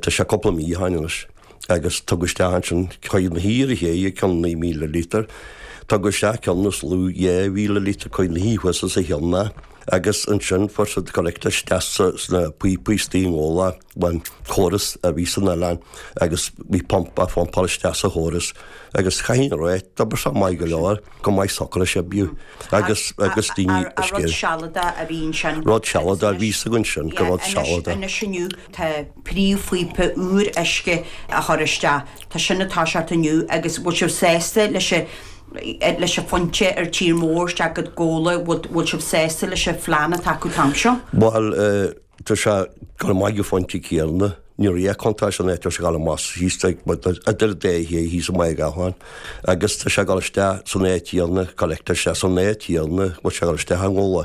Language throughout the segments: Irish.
Tá sé cúpla mí ó shin anois agus tugadh isteach ansin Caoga na hUidhir a théigh ag cionn 9,000 líotar. Tugadh isteach cionn is lú 2,000 líotar Caoga na hUidhir thuas sa Hill na agus ansin fuair siad collector isteach sna píopaí istigh i nGabhla an córas a bhí san oileán agus bhí pump á phumpáil isteach sa chóras agus chaithfinn a rá d'oibir sé maith go leor, go maith socair sé bíodh agus agus daoine ar scéal. Rud sealadach a bhí ansin. Rud sealadach a bhí sa ansin go rud sealadach. Tá príomhphíopa úr uisce á chur isteach. Tá sin ag toiseacht inniu agus bhfuil sibh sásta leis an, leis an phointe ar tír mór isteach go Gabhla, bhfuil sibh sásta leis an phlean atá acu an t-am seo? Bhuel, tá sé ag gabháil amach ón phointe céanna. Ní raibh aon chuntáiste in áit ar ghabh amach síos ag, a deir Dé hAodha thíos i Machaire Gathlán agus tá sé ag gabháil isteach san áit chéanna, ag gabháil isteach san áit chéanna a bhfuil sé ag gabháil isteach i nGabhla.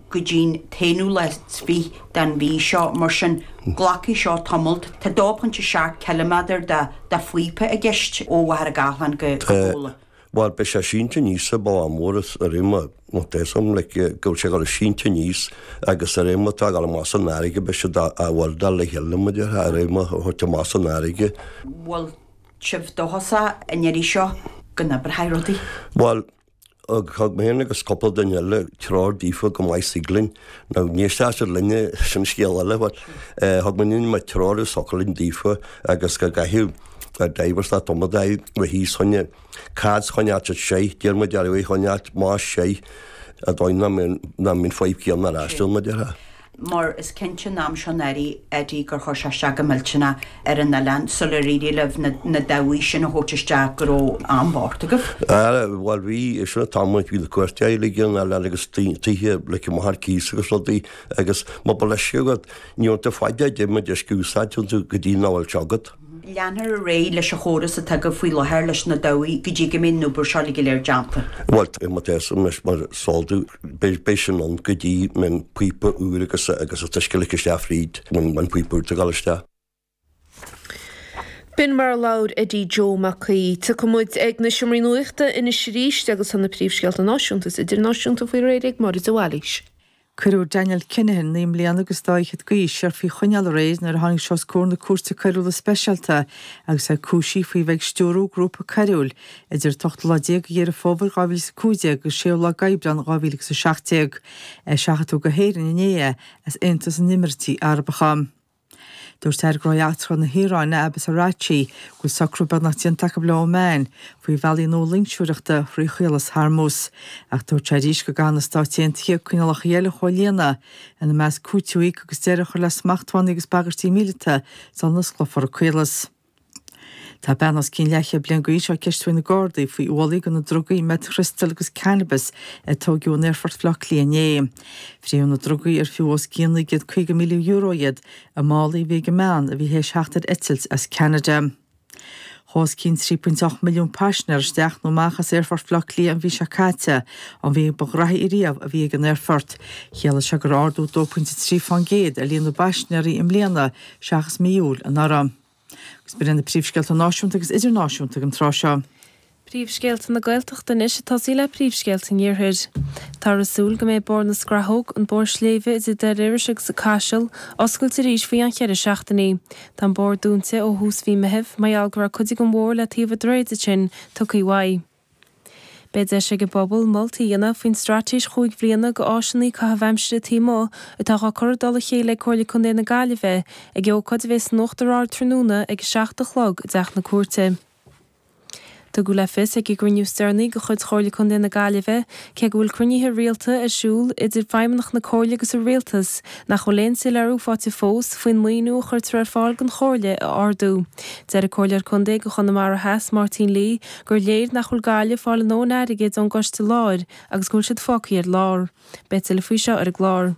go dtí'n t-aonú lá 's fich' den mhí seo, mar sin, glacfaidh seo tamalt. Tá 2.7 cilimeadair de de phíopa i gceist, ó Mhachaire Gathlán go Gabhla. Bhal, beidh sé sínte aníos an bealach mór is a réir mar tá sin, like, go bhfuil sé ag gabháil sínte aníos agus a réir mar tá sé ag gabháil amach san fharraige, beidh siad á weldáil le chéile, mar a déarfá, a réir mar tá sé ag gabháil amach san fharraige. Bhfuil sibh dóchasach an iarraidh seo go n-oibreoidh rudaí? Bhal, Á thug mé féin agus cúpla duine eile treoir daofa go mbeadh Siglinn, nó níor sásúil linne sin scéal eile, but thug mé líon mhaith treoir i Socaillín daofa agus go gcaithfeadh a dheighilt leat iomadai le híos choinne. Cad 's choinneáilt it sei? D'iarr muid air é a choinneáilt, más sei, sa dóigh nach mbíonn fadhb céanna ar ais mar a déarfá. mar is cinnte an t-am seo anuraidh, Eddie, gur chuir sé isteach go millteanach ar an oileán sular éirigh libh na dabhaigh sin a thabhairt isteach go raibh an-bhuairt agaibh? Ara, bhuel, bhí, sin an t-am bhí na cuairteoirí uilig ar an oileán agus tithe ligthe amach ar cíos agus rudaí agus muna bhfuil uisce agat, ní aithníonn tú caidé an méid uisce a úsáideann tú go dtí nach bhfuil sé agat. Leanfar ar aghaidh leis an chóras atá agaibh faoi láthair leis na dabhaigh go dtí go mbeidh an obair seo go léir déanta. Bhuel, tá mo théasanna anois mar is eol duit. Beidh sin ann go dtí go mbeidh an píopa úr agus an t-uisce ligthe isteach fríd an píopa úr atá ag gabháil isteach. B'in mar a labhair Eddie Joe Mac Aoidh. Rachaidh muid ag an seomra nuachta anois arís agus tá na príomhscéalta náisiúnta is idirnáisiúnta faoi réir ag Máire de Bhailís. Cuireadh Daniel Kinahan, naoi mbliana agus dhá fhichead d'aois, siar faoi choinneáil aréir nuair a tháinig sé os comhair na Cúirte Coiriúla Speisialta agus é cúisithe faoi bheith ag stiúradh grúpa coiriúil idir an 18ú lá de Dheireadh Fómhair 2015 agus an 6ú lá d'Aibreán 2017. Seachadadh go hÉirinn inné é as Aontas na nÉimíríochtaí Arabacha. Dúirt Aire Gnóthaí Eachtracha na hIaráine Abbas Araghchi go bhfuil socrú beagnach déanta acu le Oman faoi bhealaí nua loingseoireachta thrí Chaolas Hormuz. Ach dúirt sé arís go gcaithfidh na Stáit Aontaithe coinníollacha eile a chomhlíonadh, ina measc cúiteamh a íoc agus deireadh a chur le smachtbhannaí agus bagairtí míleata sula n-osclófar an caolas. Tá bean os cionn leathchéad bliain d'aois á ceistiú ag na Gardaí faoi ualach de na drugaí meth-chrystal agus cannabis a tógadh in aerfort Bhleá Cliath inné. Fríothadh na ndrugaí, ar fiú os cionn €950,000 iad i málaí a bhí ag an mbean a bhí théis theacht ar eitilt as Ceanada. Chuaigh os cionn 3.8 milliún paisinéir isteach nó amach as aerfort Bhleá Cliath an mhí seo caite, an mhí ba ghraithí riamh a bhí ag an aerfort. Chiallaigh seo gur ardú 2.3 faoin gcéad ar líon na bpaisinéirí i mbliana seachas mí Iúil anuraidh. Agus b'in iad na príomhscéalta náisiúnta agus idirnáisiúnta ag an tráth seo. Príomhscéalta na Gaeltachta anois ag tosaí le príomhscéalta an Iarthair. Táthar ag súil go mbeidh Bóthar na Scrathóg, an bóthar sléibhe idir Doire Iorrais agus an Caiseal, oscailte arís faoi cheann cheithre seachtainí. Tá an bóthar dúnta ó thús mhí Meithimh, mar gheall go raibh cuid den bhóthar le taobh an droichid ansin, tugthaí uaidh. Beidh deis ag an bpobal moltaí a dhéanamh faoin straitéis chúig bhliana do áiseanna caitheamh aimsire taobh amuigh atá á cur i dtoll a chéile ag Comhairle Contae na Gaillimhe ag ócáid a bheidh san Uachtar Ard tráthnóna ag 7 a chlog i dTeach na Cúirte. Tugadh le fios ag an gcruinniú is deireanaí de chuid Chomhairle Contae na Gaillimhe, cé go bhfuil cruinnithe rialta ar siúl idir feidhmeannaigh na Comhairle agus an Rialtas, nach bhfuil aon soiléiriú faighte fós faoin maoiniú a chuirtear ar fáil don Chomhairle a ardú. Deir an Comhairleoir Contae do Chonamara Theas, Máirtín Lee, gur léir nach bhfuil Gaillimh ag fáil a ndóthain airgid ón gciste láir agus go bhfuil siad fágthaí ar lár. Beidh tuilleadh faoi seo ar an gclár.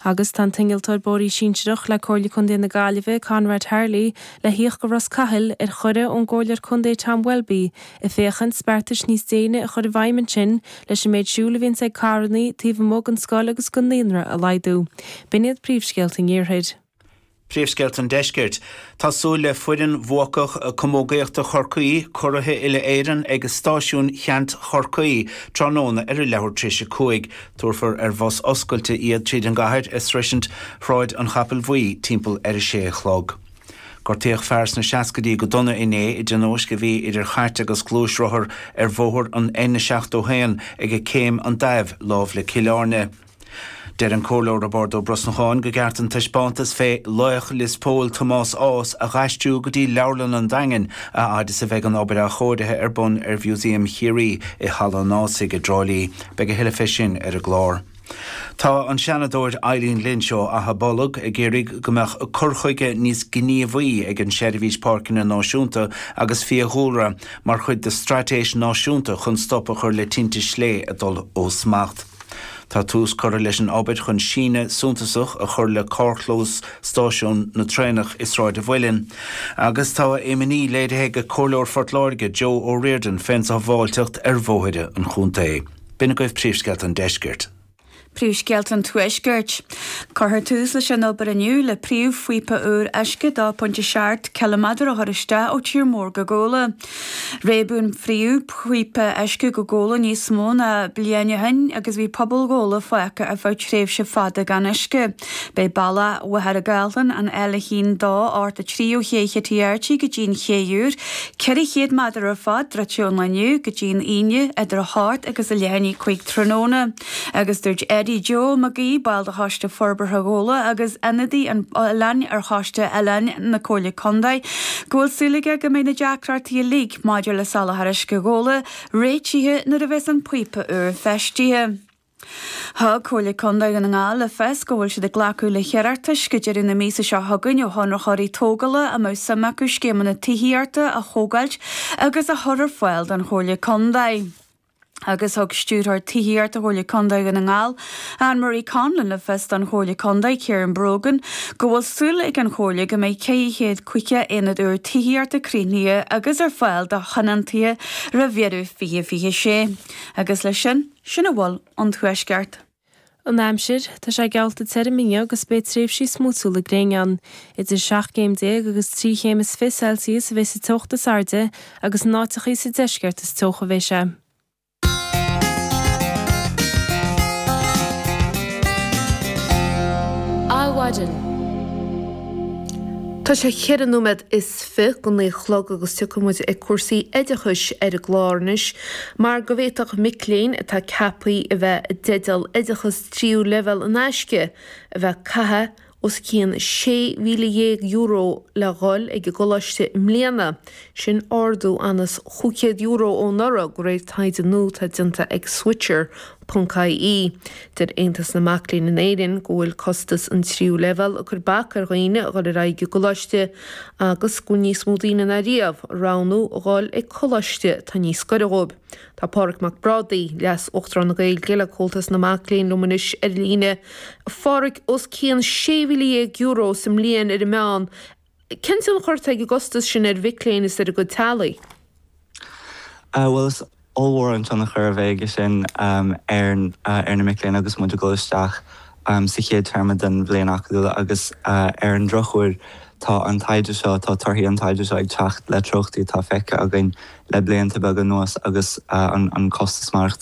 Agus tá an t-innealtóir bóithrí sinsearach le Comhairle Contae na Gaillimhe, Conrad Harley, le thíocht go Ros Cathail, ar chuireadh ón gComhairleoir Contae Tom Welby, ag féachaint beartais níos déine a chur i bhfeidhm ansin leis an méid siúil a bhíonns ag carrannaí taobh amuigh den scoil agus den naíonra a laghdú. B'in iad príomhscéalta an iarthair. Príomhscéalta an Deiscirt. Tá súil le foireann bhuacach camógaíochta Chorcaí, curaithe uile-Éireann, ag Stáisiún Cheant Chorcaí tráthnóna ar a leathuair tar éis a cúig. Tabharfar ar bhus oscailte iad tríd an gcathair ag sroisint Shráid an Chapaill Bhuí timpeall ar a sé a chlog. Gortaíodh fear sna seascaidí go dona inné i dtionóisc a bhí idir chairt agus gluaisrothar ar bhóthar an N71 ag Céim an Daimh, lámh le Cill Airne. Deir an Comhairleoir Roibeárd Ó Brosnacháin go gceart an taispeántas fé laoch Lios Póil, Tomás Ághas, a dh'aistriú go dtí Leabharlann an Daingin a fhad is a bheidh an obair athchóirithe ar bun ar Mhúsaem Chiarraí i Halla an Ághasaigh i dTrá Lí. Beidh a thuilleadh fé sin ar an gclár. Tá an Seanadóir Eileen Lynch ó Achadh Bolg ag iarraidh go mbeadh cur chuige níos gníomhaí ag an tSeirbhís Páirceanna Náisiúnta agus Fiadhúlra mar chuid de straitéis náisiúnta chun stop a chur le tinte sléibhe ag dul ó smacht. Tá tús curtha leis an obair chun síneadh suntasach a chur le carrchlós stáisiún na traenach i Sráid an Mhuilinn agus tá imní léirithe ag Comhairleoir Phort Láirge Joe O'Riordan fén sábháilteacht ar bhóithre an chontae. B'in agaibh príomhscéalta an deiscirt. Príomhscéalta an tuaiscirt. Cuirfear tús leis an obair inniu le príomhphíopa úr uisce 2 pointe 7 ciliméadar a chur isteach ó tír mór go Gabhla. Réabadh an príomhphíopa uisce go Gabhla níos mó ná bliain ó shin agus bhí pobal Ghabhla fágtha ar feadh tréimhse fada gan uisce. Beidh bealach Mhachaire Gathlán, an L1283 ó Ché Chití Airtí go dtí an ché úr, 400 méadar ar fad, druidte ón lá inniu go dtí an Aoine, idir a hocht agus a leath i ndiaidh a cúig tráthnóna. Agus dúirt Eddie Joe McGee, ball de Choiste Forbartha Ghabhla agus ionadaí an oileáin ar Choiste Oileáin na Comhairle Contae, go bhfuil súil aige go mbeidh na deacrachtaí uilig maidir le soláthar uisce Ghabhla réitithe nuair a bheas an píopa úr feistithe. Thug Comhairle Contae Dhún na nGall le fios go bhfuil siad ag glacadh le hiarratais go deireadh na míosa seo chugainn ó chonraitheoirí tógála a mbeadh suim acu scéimeanna tithíochta a thógáilt agus a chur ar fáil don Chomhairle Contae. agus thug Stiúrthóir Tithíochta Chomhairle Contae Dhún na nGall, Ann Marie Conlon, le fios don Chomhairleoir Contae, Ciaran Brogan, go bhfuil súil ag an Chomhairle go mbeidh 450 aonad úr tithíochta críochnaithe agus ar fáil do thionóntaithe roimh dheireadh 2026. Agus leis sin, sin a bhfuil ón Tuaisceart. An aimsir, Tá sé geallta tirim inniu agus beidh tréimhsí smúitiúla gréine ann. Idir seacht gcéim déag agus trí chéim is fiche Celsius a bheidh sa teocht is airde agus in áiteachaí sa deisceart is teocha a bheidh sé. Adhmhaidin, Tá sé cheithre nóiméad is fiche go naoi a chlog agus tiocfaidh muid ag cúrsaí oideachais ar an gclár anois mar go bhféadfadh mic léinn atá ceapthaí a bheith i dteideal oideachas tríú leibhéal in aisce a bheith ag caitheamh os cionn €16,000 le dhul ag an gcoláiste i mbliana, sin ardú ionann's chúig chéad euro ón anuraidh, go réir taighde nua atá déanta ag Switcher. ie, Deir Aontas na Mac Léinn in Éirinn go bhfuil costas an tríú leibhéal ag cur bac ar dhaoine a dhul ar aghaidh ag an gcoláiste agus go bhfuil níos mó daoine ná riamh ag roghnú a dhul ag coláiste atá níos gaire dhóibh. Tá Pádraig Mac Brádaigh, Leas-Uachtarán na Gaeilge le Comhaltas na Mac Léinn liom anois ar líne. Phádraig, os cionn €16,000 sa mbliain ar an meán, Cén tionchar atá ag an gcostas sin ar mhic léinn is ar a gcuid teaghlaigh? Bhuel, is ollmhór an tionchar a bheidh aige sin ar na mic léinn agus muid ag dul isteach sa chéad téarma den bhliain acadúil agus ar an drochuair tá an taighde seo, tá torthaí an taighde seo ag teacht le treochtaí atá feicthe againn le blianta beaga anuas agus an costas maireachtála.